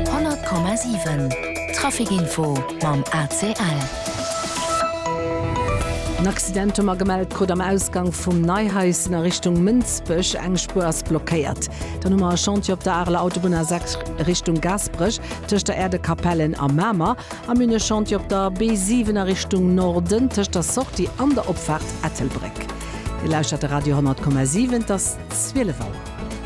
100,7 Trafic Info mam ACL. En Accident hu mer gemellt krut am Ausgank vum Neihaischen a Richtung Mënsbech. Eng Spuer ass blockéiert. Dann hu mer e Chantier op der Areler Autobunn A6 Richtung Gaasperech tëscht der Aire de Capellen a Mamer. A mir hunn e Chantier op der B7 a Richtung Norden tëscht der Sortie an der Opfaart Ettelbréck. Dir lauschtert de Radio 100,7, et ass 12 Auer.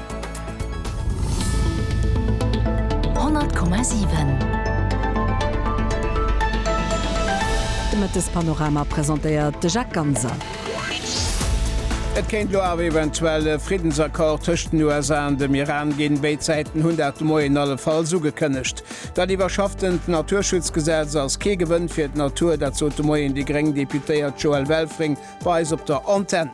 De Mëttespanorama presentéiert de Jacques Ganser. Et kéint lo awer eventuell e Friddensaccord tëscht den USA an dem Iran ginn. Béid Säiten hunn dat de Moien allefalls ugekënnegt. Dat iwwerschafftent Naturschutzgesetz ass kee Gewënn fir d'Natur, dat sot de Moien déi gréng Deputéiert Joëlle Welfring bei eis op der Antenn.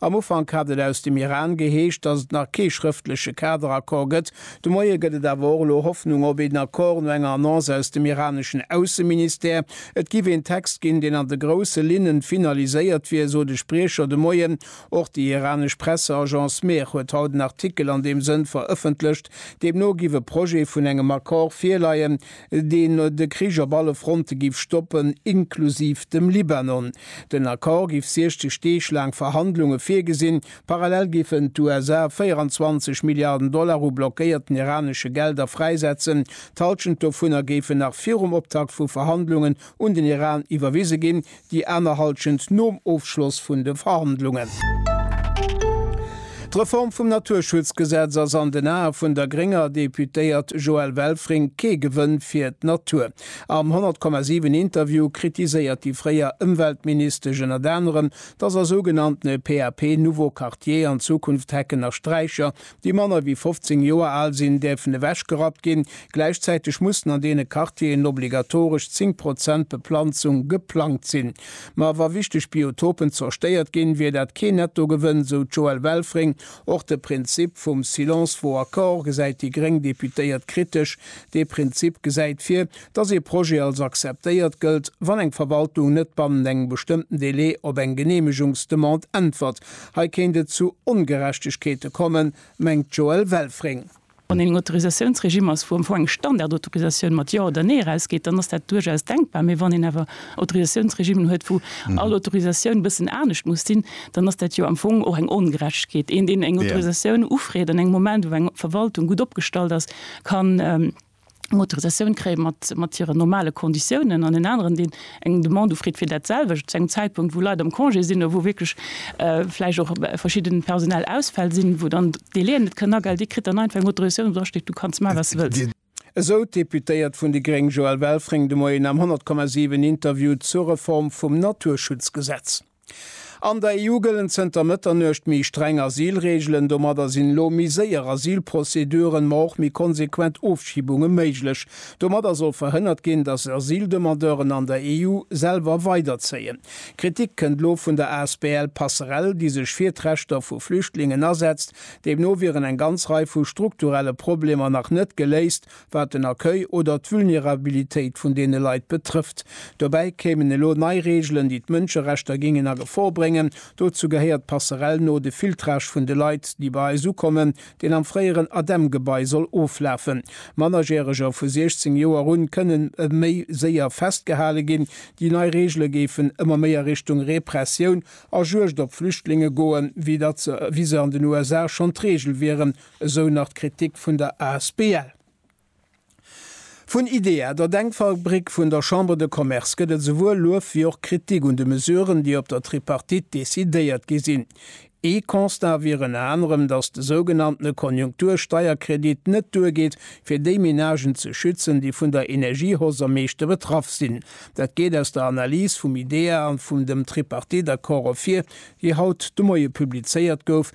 Am Ufank hat et aus dem Iran geheescht, datt et nach kee schrëftleche Kaderaccord gëtt. De Moie gëtt et awer och elo Hoffnung op een Accord, no enger Annonce aus dem iraneschen Ausseministère. Et géif een Text ginn, deen an de grousse Linnen finaliséiert wier, sot e Spriecher de Moien. Och déi iranesch Presseagence Mehr huet haut en Artikel an deem Sënn verëffentlecht. Deemno géif e Projet vun engem Accord virleien. deen de Krich op alle Fronte giff stoppen, inklusiv dem Libanon. Den Accord giff 60 Deeg laang Verhandlunge virgesinn. Parallel giffen d'USA 24 Milliarden Dollar u blockéierten iranesche Gelder fräisetzen. D'Halschent dovunner géifen nach virum Optakt vu Verhandlungen un den Iran iwwerwise ginn, Déi aner Halschent nom Ofschloss vun de Verhandlungen. D'Reform vum Naturschutzgesetz ass an den Ae vun der grénger Deputéiert Joëlle Welfring kee Gewënn fir d'Natur. Am 100,7 Interview kritiséiert déi fréier Ëmweltministesch ënnert anerem, datt a sougenanntene PAP Nouveaux Quartiers an Zukunft Hecken a Straicher déi manner wéi 15 Joer al sinn, däerfen ewechgerappt ginn. Gläichzäiteg mussen an deene Quartieren obligatoresch 10 Prozent Beplanzung geplangt sinn. Ma wa wichteg Biotopen zerstéiert ginn, wier dat keen Nettogewënn, esou d'Joëlle Welfring. Och de Prinzip vum Silence vaut accord gesäit déi gréng Deputéiert kritesch. Dee Prinzip gesäit vir, datt ee Projet als akzeptéiert gëllt, wann eng Verwaltung net bannent engem bestëmmten Delai op eng Geneemegungsdemande äntwert. Hei kéint et zu Ongerechtegkeete kommen, mengt d'Joëlle Welfring. Wann een eng Autorisatiounsregime ass, wou am Fong eng Standardautorisatioun mat Jo oder Nee erausgeet, dann ass dat duerchaus denkbar. Mee wann een awer Autorisatiounsregimen huet, wou all Autorisatioun e bëssen anescht muss sinn, dann ass dat jo am Fong och eng Ongerechtegkeet. Een, deen eng Autorisatioun ufreet an engem Moment, wou eng Verwaltung gutt opgestallt ass, kann. eng Autorisatioun kréie mat, mat hiren normale Konditiounen an en aneren, deen eng Demande ufreet fir dat selwecht, zu engem Zäitpunkt, wou Leit am Congé sinn oder wou wierklech vläicht och verschidden personell Ausfäll sinn, wou dann d'Délai'en net kënnen agel, dee kritt dann einfach eng Autorisatioun, wou drasteet, Du kanns maachen, wat s de wëlls. Esou d'Deputéiert vun déi gréng Joëlle Welfring de Moien am 100,7 Interview zur Reform vum Naturschutzgesetz. An der EU gëllen zënter Mëtternuecht méi streng Asylreegelen. Domadder sinn elo méi séier Asylprozeduren, ma och méi konsequent Ofschibunge méiglech. Domadder soll verhënnert ginn, datt Asyldemandeuren an der EU selwer weiderzéien. Kritik kënnt elo vun der asbl Passerell, déi sech fir d'Rechter vu Flüchtlingen asetzt. Deemno wieren eng ganz Rei vu strukturelle Problemer nach net geléist, wat den Accueil oder d'Vulnerabilitéit vun deene Leit betrëfft. Dobäi kéimen elo nei Reegelen, déi d'Mënscherechter géingen a Gefor bréngen. Dozou gehéiert passerell no de Filtrage vun de Leit, déi bei eis ukommen, deen am fréieren ADEM-Gebai soll oflafen. Mannerjäreger vu 16 Joer un kënnen méi séier festgehale ginn. Déi nei Reegele géifen ëmmer méi a Richtung Repressioun a Juegd op Flüchtlinge goen, wéi se an den USA schonn d'Reegel wieren, Esou nach d'Kritik vun der Asbl. Vun IDEA, der Denkfabrik vun der Chambre de Commerce, gëtt et souwuel Luef wéi och Kritik un de Mesuren, déi op der Tripartite decidéiert gi sinn. Ee Constat wier ënner anerem, datt de sougenanntene Konjunktur-Steierkredit net duergeet, fir déi Menagen ze schützen, déi vun der Energiehausse am meeschte betraff sinn. Dat geet aus der Analys vum IDEA an vum dem Tripartite-Accord ervir, déi haut de Moie publizéiert gouf.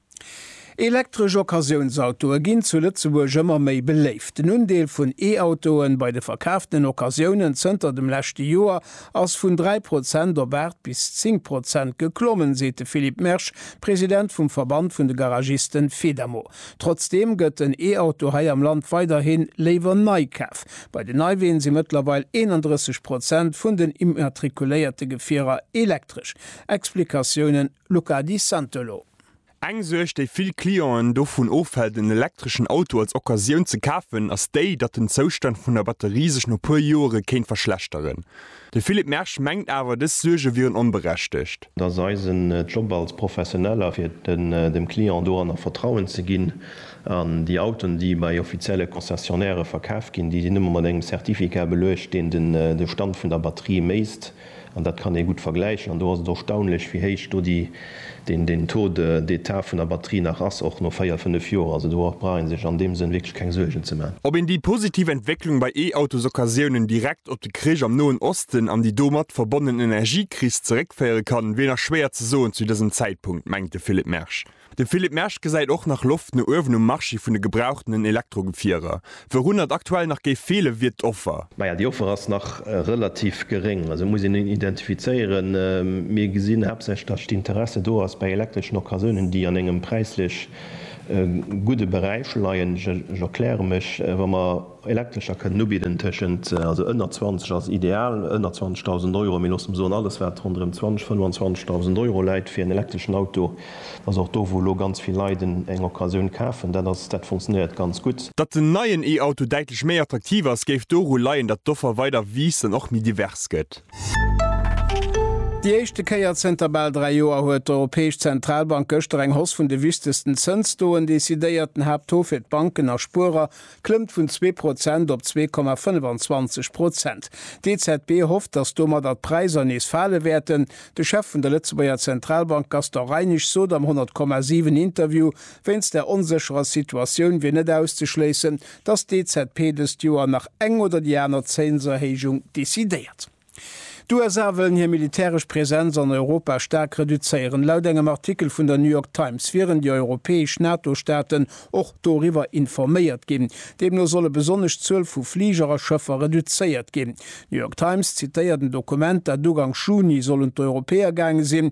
Elektresch Occasiounsautoe ginn zu Lëtzebuerg ëmmer méi beléift. Den Undeel vun E-Autoe bei de verkaaften Occasiounen zënter dem leschte Joer ass vun 3 Prozent op 8 bis 10 Prozent geklommen, seet de Philippe Mersch, President vum Verband vun de Garagiste Fedamo. Trotzdeem gëtt den E-Auto hei am Land weiderhi léiwer nei kaf. Bei den Neiween si mëttlerweil 31 Prozent vun den immatrikuléierte Gefierer elektresch. Explikatiounen. Luca Di Santolo. Eng Suerg, déi vill Clienten dovun ofhält, en elektreschen Auto als Occasioun ze kafen, ass déi, datt den Zoustand vun der Batterie sech no puer Joere kéint verschlechteren. De Philippe Mersch mengt awer, dës Suerge wieren onberechtegt. Et ass eisen Job als Professioneller, fir dem Client doranner Vertrauen ze ginn. An déi Autoen, déi bei offizielle Concessionnairë verkaf ginn, déi sinn ëmmer mat engem Certificat beluecht, deen de Stand vun der Batterie méisst. An dat kann ee gutt vergläichen. An do ass et erstaunlech, wéi héich do deen Taux d'état vun der Batterie nach ass, och no véier, fënnef Joer. Also do brauch ee sech an deem Sënn wierklech keng Suergen ze maachen. Ob een déi positiv Entwécklung bei E-Autosoccasiounen direkt op de Krich am Noen Osten an déi domat verbonnen Energiekris zeréckféiere kann, wier nach schwéier ze soen zu dësem Zäitpunkt, mengt de Philippe Mersch. De Philippe Mersch gesäit och nach Loft no uewen um Marché vun de gebrauchtenen Elektrogefierer. Wourunner et aktuell nach géif feele wier d'Offer. Maja, déi Offer ass nach relativ geréng. Also muss een en identifizéieren. Mir gesinn haaptsächlech, datt d'Interesse do ass bei elektreschen Occasiounen, déi an engem präislech gudde Beräich leien. Ech erkläre mech, Wa mer. Elektrescher kënnen ubidden tëschent, also ënner 20 ass ideal, ënner 20.000 Euro, mee loosse mer soen, alles wat ronderëm 20, 25.000 Euro läit fir en elektreschen Auto, ass och do wou elo ganz vill Leit en eng Occasioun kafen. Dat ass, dat funktionéiert ganz gutt. Datt den neien E-Auto däitlech méi attraktiv ass, géif doru leien, datt d'Offer weider wiisst an och méi divers gëtt. Déi éischte Kéier zënter bal dräi Joer huet d'Europäesch Zentralbank gëschter eng Hoss vun de wichtegsten Zënstaux decidéiert. Den Haapttaux fir d'Banken a Spuerer klëmmt vun zwee Prozent op zwee Komma 25 Prozent. D'EZB hofft, datt domadder d'Präisser nees fale wäerten. De Chef vun der Lëtzebuerger Zentralbank Gaston Reinesch sot am 100, 7 Interview, wéinst der onsécherer Situatioun wier net auszeschléissen, datt d'EZB dëst Joer nach eng oder déi aner Zénserhéijung decidéiert. D'USA wëllen hir militäresch Presenz an Europa staark reduzéieren. Laut engem Artikel vun der New York Times wieren déi europäesch NATO-Staaten och doriwwer informéiert ginn. Deemno solle besonnesch d'Zuel vu Fliger a Schëffer reduzéiert ginn. D'New York Times zitéiert en Dokument, dat Ugank Juni sollen d'Europäer gaange sinn,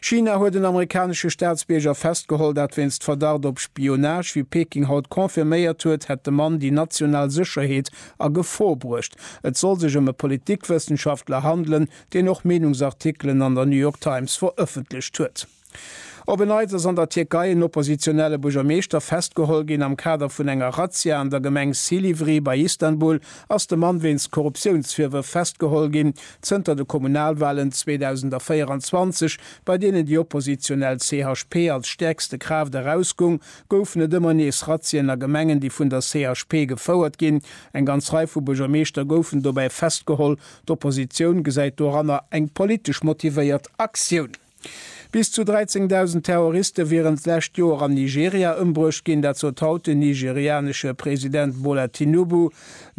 China huet en amerikanesche Staatsbierger festgeholl, dat wéinst Verdacht op Spionage. Wéi Peking haut confirméiert huet, hätt de Mann déi national Sécherheet a Gefor bruecht. Et soll sech ëm e Politikwëssenschaftler handelen, deen och Meenungsartikelen an der New York Times verëffentlecht huet. Op en Neits ass an der Tierkei en oppositionelle Buergermeeschter festgeholl ginn. Am Kader vun enger Razzia an der Gemeng Silivri bei Istanbul ass de Mann wéinst Korruptiounsvirwërf festgeholl ginn. Zënter de Kommunalwahlen 2024, bei deenen déi oppositionell CHP als stäerkste Kraaft erausgung, goufen et ëmmer nees Razzien a Gemengen, déi vun der CHP gefouert ginn. Eng ganz Rei vu Buergermeeschter goufen dobäi festgeholl. D'Oppositioun gesäit doranner eng politesch motivéiert Aktioun. Bis zu 13.000 Terroriste wieren d'lescht Joer an Nigeria ëmbruecht ginn, dat sot haut den nigerianesche President Bola Tinubu.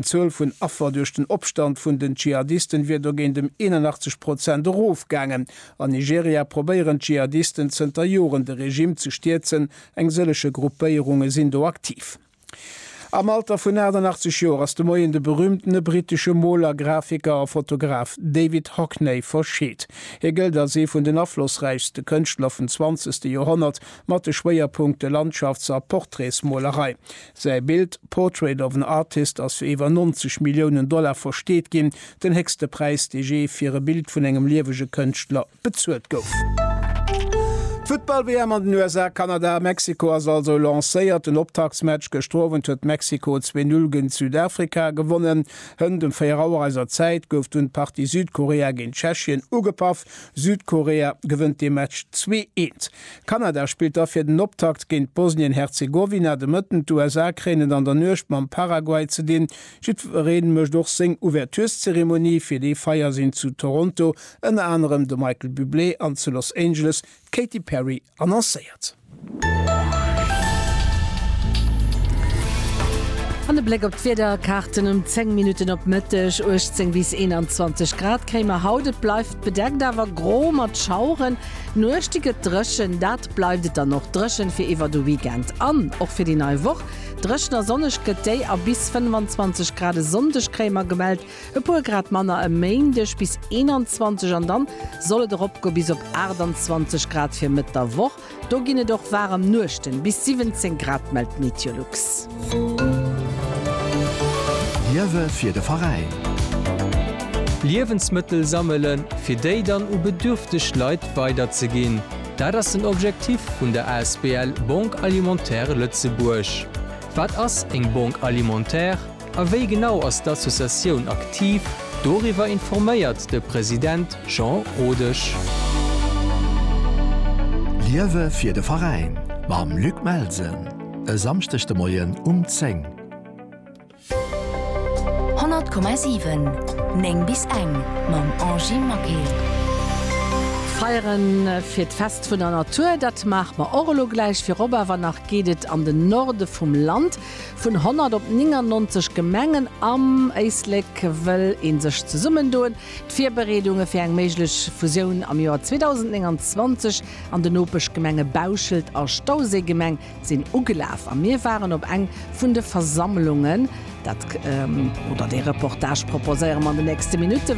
D'Zuel vun Affer duerch den Opstand vun den Dschihadisten wier dogéint ëm 81 Prozent erofgaangen. An Nigeria probéieren d'Dschihadisten zënter Joren de Regime ze stierzen, eng sëllege Gruppéierunge sinn do aktiv. Am Alter vun 88 Joer ass de Moien de berüümtene brittesche Moler, Grafiker a Fotograf David Hockney verscheet. Hie gëllt als ee vun den aflossräichste Kënschtler vum zwanzegste Joerhonnert, mat de Schwéierpunkte Landschafts a Portraitsmolerei. Säi Bild Portrait of an Artist ass fir iwwer 90 Milliounen Dollar versteet ginn, den héchste Präis, dee jee fir e Bild vun engem liewege Kënschtler bezuelt gouf. D'Futtball-WM an den USA, Kanada a Mexiko ass also lancéiert. Den Optaktsmatch gëschter Owend huet Mexiko zwee Null géint Südafrika gewonnen. Hënt em 4 Auer eiser Zäit gouf dunn d'Partie Südkorea géint Tschechien ugepaff. Südkorea gewënnt dee Match zwee eent. Kanada spillt da fir den Optakt géint Bosnien-Herzegowina de Mëtten. D'USA kréien et an der Nuecht mam Paraguay ze dinn. Jiddweree mécht och seng Ouverturezeremonie. Fir dee Feier sinn zu Toronto Ënner anerem de Michael Bublé an zu Los Angeles d'Katy Perry annoncéiert. An e Bléck op d'Wiederkaarten, Um 10 Minutten op Mëtteg 18 bis 21 Grad kréie mer haut. Et bleift bedeckt, awer gro mat Schaueren. Nuechte gëtt dréchen, dat bleift et dann och dréchen fir iwwer de Weekend an och fir déi nei Woch. Dréchen a sonneg gëtt déi a bis 25 Grad e Sonndeg kréie mer gemellt. E puer Grad manner e Méindeg, bis 21, an dann soll et eropgoe bis op 28 Grad fir Mëtt der Woch. Do ginn et och waarem Nuechten, bis 17 Grad mellt d'Meteolux. Liewe fir de Veräin. Liewensmëttel sammele fir déi dann u bedürfteg Leit weiderzeginn, dat ass den Objektif vun der asbl Banque Alimentaire Lëtzebuerg. Wat ass eng Banque Alimentaire? A wéi genau ass d'Associatioun aktiv? Doriwwer informéiert de President Jean Rodesch. Liewe fir de Veräin mam Luc Melsen e Samschdeg de Moien um 10. 100,7, 9 bis eng mam Angie Maquet. Feiere fir d'Fest vun der Natur, dat maache mer och elo gläich. Virop awer nach geet et an den Norde vum Land. Vun 100 op 99 Gemengen am Éislek wëll ee sech zesummendoen. D'Virbereedunge fir eng méiglech Fusioun am Joer 2029 an den Nopeschgemenge Bauschelt a Stauséigemeng sinn ugelaf a mir waren op eng vun de Versammlungen. Dat oder dee Reportage proposéiere mer an de nächste Minutten.